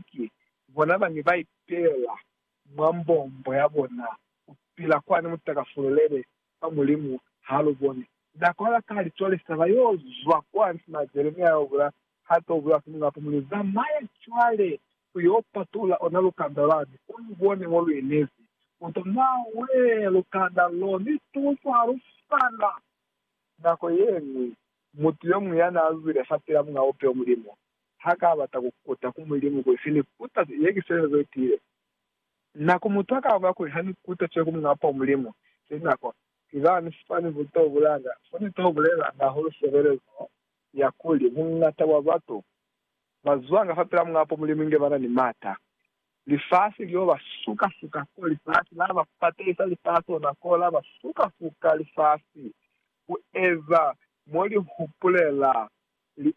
Ki bona bani ba ipeela mwa mbombo ya bona ku pila kwani mu takafululele kwa Mulimu ha lu boni. Na kwala ka litolisa ba yo zwa kwa ntima Jeremia yo bula ha to bulewa ki Mulimu, hape mu li, Zamaya cwale ku yo patulula ona lukanda lwani, u lu bone mo lu inezi. Mu to nawe lukanda lo ni tuso ha lu fana. Nako ye ñwi, mutu yo muñwi ya n'a zwile fa pila Muñ'a Bupeho, Mulimu, ha ka bata ku kuta ku Mulimu kuli se ni kuta ze, ye ki seo ze tiile. Na ku mutu ha ka bula kuli, Ha ni kuta seo ku Muñ'a po Mulimu, se na kwa. Ki za ni fani ku to bulanga. Fo ni to bulelanga hahulu sebelezo ya kuli, buñata bwa batu ba zwanga fapil'a Muñ'a po Mulimu inge ba na ni m'ata. Lifasi lio ba suka-suka ko lifasi, la ba patelisa lifasi ona ko, la ba suka-suka lifasi ku eza mo li hupulela.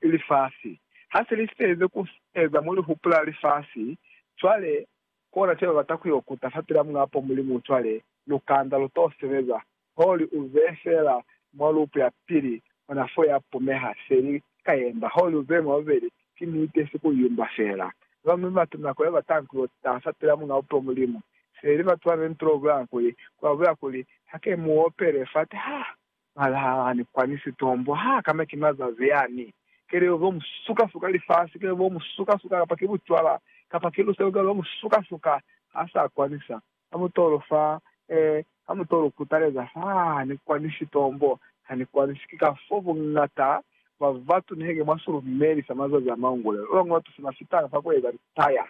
lifasi. Ha se li sitelize ku eza mo li hupula lifasi, cwale kona caba bata ku yo kuta fapil'a Muñ'a Apo Mulimu. Cwale lukanda lu t'o sebeza holi u ze feela mwa lupu ya pili, ona fo ya pumeha, se li ka yemba holi u ze mwa bubeli. Ki niti, si ku yumba feela. Ba bañwi batu nako ye batanga ku yo taha fapil'a Muñ'a Apo Mulimu, se li batu ba ne ni t'o bulanga kuli, ku ba bulela kuli, Ha ke mu opele fati, ha Balahani kwani sitombo ha kana ki mazazi yani, kelelo zo mu suka suka, lifasi ke bo mu suka suka, kapa ki bucwala, kapa ki luselo ke lo mu suka suka, ha sa kwani sa. Ha mu to lu fa, eh, ha mu to lu kutaleza fa, ha ni kwani sitombo, ha ni kwani si. Ki ka fo bungata bwa batu niheke mwa si lumeli sa mazazi a maungulelo. Ba bañwi batu se ba fitanga fa ku eza litaya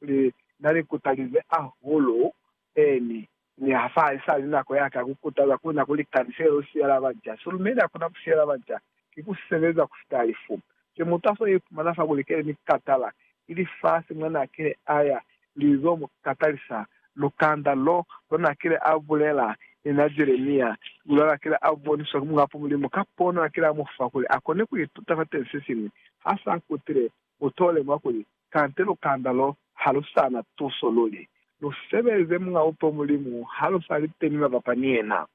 kuli na ni kutalize ahulu Beni, Niha fa isali nako yaka ya kukutaza kuna kuli Kanisele yo siyela baca, silume lia kona kusiyela baca ki kusebeza kufita lifu. Ki mutaso ye ipumana fa kuli kele ni katala, ili fasi mwa na kile aya, Li zo mu katalisa. Lukanda lo, lo na kile a bulela, ni na Jeremia, lula la kile a boniswa ki Mukapo Mulimu ka pono a kile a mu fa kuli a kone ku ituta fa teñi sesiñwi, ha sa kutile, U t'o lemuha kuli kante lukanda lo ha lu sa na tuso luli. Lu sebeze Muñ'a Bupeho Mulimu ha lu sa li teñi mabapa ni yena.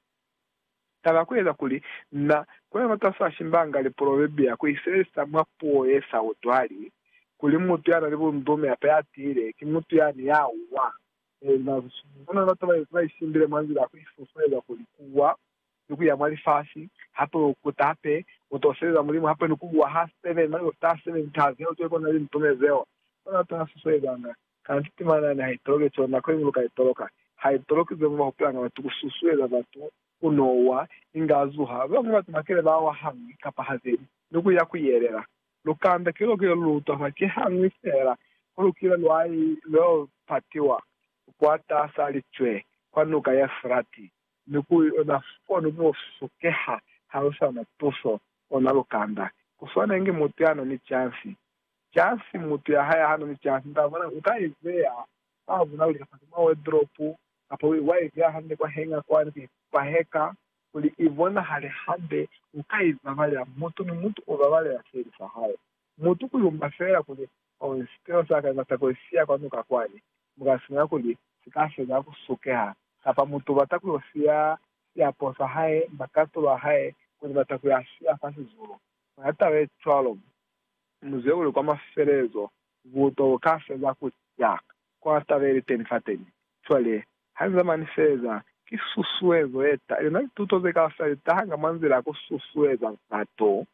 Taba ya ku eza kuli na kone matas'a Shimbanga liprobebia ku i sebelisa mwa puo ye sa utwali, kuli mutu ya na ni bundume hape ya tiile ki mutu yani ya wa. Ee, na zwa cwalo. Mwa nako ya bataba ye ba i simbile mwa nzila ya ku i susueza kuli ku wa ni kuya mwa lifasi, hape u kutape, u to sebeza Mulimu, hape ni kubuwa ha seven, mane u ta seven ta zeo ze kona li ntume zeo. Ona ta si suezanga. Kanti timanani ha i toloke co, nako iñwi lu ka i toloka. Ha i toloki ze mu ba hupulanga batu ku susueza batu ku no wa, inge a zuha, bañwi batu ba kile ba wa hañwi kapa ha zeli, ni ku ya ku yelela. Lu kanda keloko ye lu utwa fa, ki hañwi fela ku lukile lwa i lo patiwa, kwa ta sa licwe, kwa nuka ya Efrati. Mi ku yona fani ku sokeha ha u sa na tuso, u na lukanda. Ku swana inge mutu ya na ni cansi. Cansi, mutu ya hae ha na ni cansi, nta bona, u ka i beya mwa bunaluli kapa mwa wardrobe, kapa wa i beya hande kwa hanger kwani ku ipaheka, kuli i bonahale hande. U ka i babalela. Mutu ni mutu u babalela seli sa hae. Mutu ku yumba feela kuli Kono sipilo sa ka ibata kuli si ya kwanuka kwani, mu ka sumela kuli si ka feza ku sukeha. Kapa mutu u bata ku yo siya siapo sa hae, makatulo a hae, kono u bata ku ya siya fa sizulu. Mwa taba ye cwalo, mu zwe kuli kwa mafelelezo buto bu ka feza ku ca. Kono taba ye li teni fateni cwale, ha ni zamani ni feleza, ki susuezo ye ta. Luna lituto ze kaufela li tahanga mwa nzila ya ku susueza batu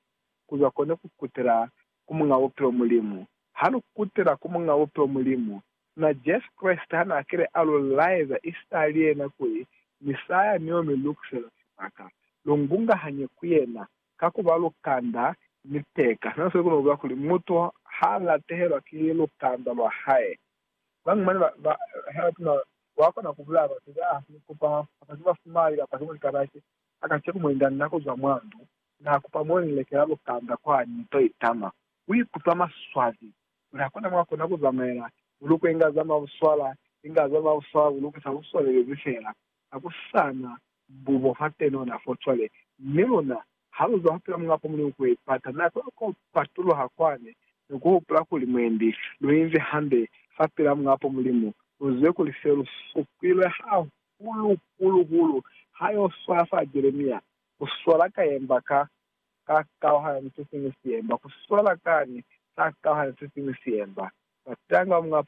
ku zwa kone ku kutela ku Muñ'a Bupilo Mulimu. Ha lu kutela ku Muñ'a Bupilo Mulimu, na Jesu Kreste ha n'a kile a lu laeza Isitali yena kuli, Misaya ni yo mi lukusela sibaka, lu ngungahanye ku yena, ka ku ba lukanda ni peka. Sina se kona ku bula kuli mutu ha latehelwa ki lukanda lwa hae. Bañwi mane ba, ba, ha ba tuna, wa kona ku bulaya batu ba, ni ku ba fa, kamba ki ba fumali, kamba ki muli kabaki, a ka cekumuinda nako zwa mwa ndu, Na kupa mwa ni lekela lukanda kwa ni to itama. U ikutwa maswabi. Kuli ha kuna mwa kona ku zamaela, bulukwe inga za mwa buswala, inga za mwa buswala bulukwe sa buswalelezi fela. Ha ku sa na bubo fa teno na fo cwale. Mi luna, ha lu zwa hupila Muñ'a Pamuli ni ku ipata, na kona ku patuluha kwani ni ku hupula kuli mwendi lu inzi hande fa pila Muñ'a Pamuli mo. Lu zibe kuli se lu supilwe hahulu-hulu-hulu ha yo swaya fa Jeremia, Ku swala ka yemba ka ka kauhana ni sesiñwi siemba, ku swala kani ka kauhana ni sesiñwi siemba. Batanga mwa